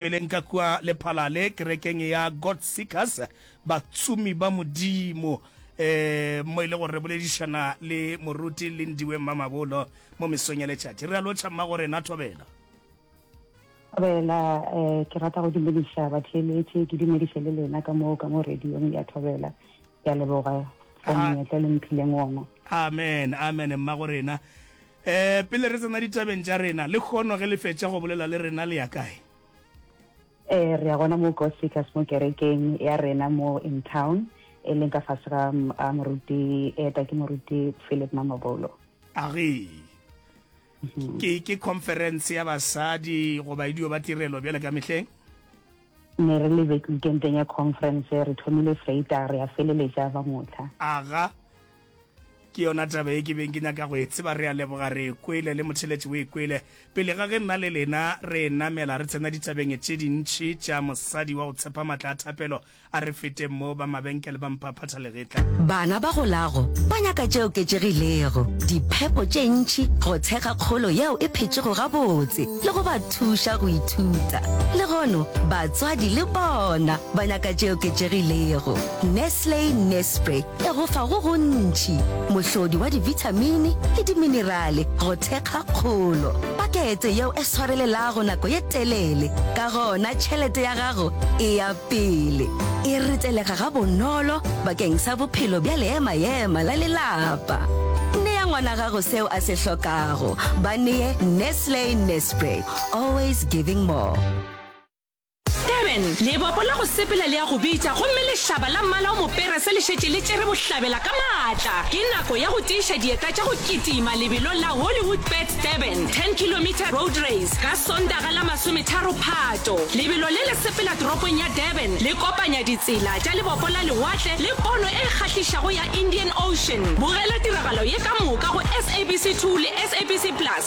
Pele nka kua lephala le kerekeng ya God Seekers, batsomi ba Modimo, um mo e le gore re boledišana le moruti Lindiwe Mmamabolo mo mesong ya letšatši. Re a lotšha mmago rena Thobela. Thobela, um ke rata go dumediša batheeletši, ke dumediše le lena ka mo ka mo radiong ya Thobela. Ke a leboga for monyetla le mphileng ona. Amen, amen mmago rena. Ee, pele re tsena ditabeng tša rena, lekhono ge le fetša go bolela le rena le ya kae? Ee, re ya gona mo God Seekers mo kerekeng ya rena mo in town, e leng ka fase ga a moruti eta ke moruti Philip Mamabolo. A re, mhm. ke ke conference ya basadi goba e dio ba tirelo bjale ka mehleng? ne re le bekenteng ya conference re thomile freita re ya feleletša ba motlha aga ke yona taba e ke beng ke nyaka go e tseba re a leboga re kwele le motheletši o e kwele pele ga ge nna le lena re namela re tsena ditabeng tše dintšhi tša mosadi wa go tshepa matla a thapelo a re feteng mo ba mabenkele ba mphaphatha legetla bana ba golago ba nyaka tše oketšegilego diphepo tše ntšhi go tshega kgolo yeo e phetšego gabotse le go ba thuša go ithuta le gono batswadi le bona ba nyaka tše oketšegilego Nestle Nespre e go fa go gontši, mohlodi wa divithamini le diminerale go thekga kgolo. Pakete yeo e swarelelago nako ye telele, ka gona tšhelete ya gago e ya pele. E retelega gabonolo bakeng sa bophelo bja leema-ema la lelapa. Nea ngwana gago seo a se hlokago. Ba nee Nestle Nespre, always giving more. Durban, lebopo la go sepela le a go bitša gomme lehlaba la mmala o mopere se le šetše le tšere bohlabela ka maatla. Ke nako ya go tiiša dieta tša go kitima lebelong la Hollywoodbets Durban 10 kilometre road race ka Sontaga la masometharo Phato. Lebelo le le sepela toropong ya Durban le kopanya ditsela tša lebopo la lewatle le pono e kgahlišago ya Indian Ocean. Bogela tiragalo ye ka moka go SABC 2 le SABC Plus.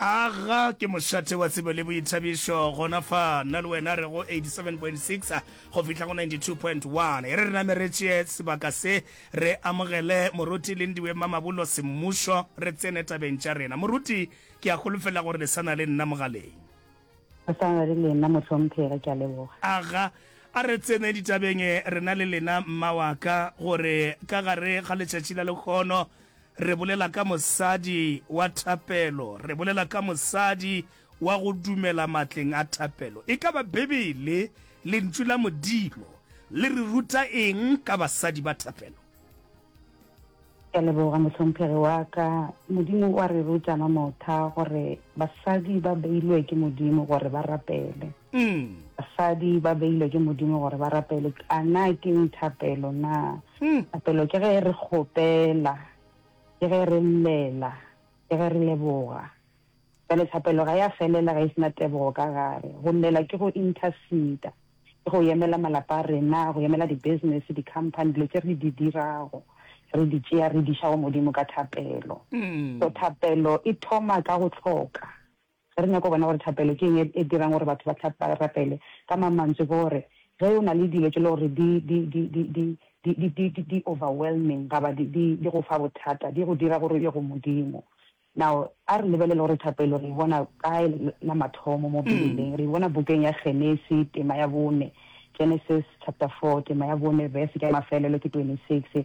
Aga ke mošate wa tsebo le boithabišo gona fa nna le wena re go 87.6 go fihla go 92.1. E re re name re tšee sebaka se, re amogele Moruti Lindiwe Mamabolo Semmušo, re tsene tabeng tša rena. Moruti, ke a holofela gore le sa na le nna mogaleng. Re sa na le lena mohlomphegi, ke a leboga. Aga, a re tsene ditabeng rena le lena, mma wa ka, gore ka gare ga letšatši la lehono, Re bolela ka mosadi wa thapelo. Re bolela ka mosadi wa go dumela matleng a thapelo. E ka ba Bibele, Lentšu la Modimo, le re ruta eng ka basadi ba thapelo? Ke a leboga, mohlomphegi wa ka. Modimo o a re ruta, Mamotha, gore basadi ba beilwe ke Modimo gore ba rapele. Mm. Basadi ba beilwe ke Modimo gore ba rapele. A na ke eng thapelo na? Mm. Thapelo ke ge re kgopela, ke ge re llela, ke ge re leboga. Jale thapelo ga ya felela ga e sena tebogo ka gare. Go llela ke go interceder, ke go yemela malapa a rena, go yemela di-business, di-company, dilo tse re di dirago, re di tšea re di iša go Modimo ka thapelo. Mm. So thapelo e thoma ka go tlhoka. Ge re nyaka go bona gore thapelo ke eng e dirang gore batho ba rapele, ka mang mantswe ke gore ge o na le dilo tše e lego gore di overwhelming gaba di go fa bothata, di go dira gore o ye go Modimo. Now a re lebelele gore thapelo re e bona kae la mathomo mo Beibeleng. Re e bona bukeng ya Genesi tema ya bone, Genesis chapter 4 tema ya bone verse ya mafelelo ke 26.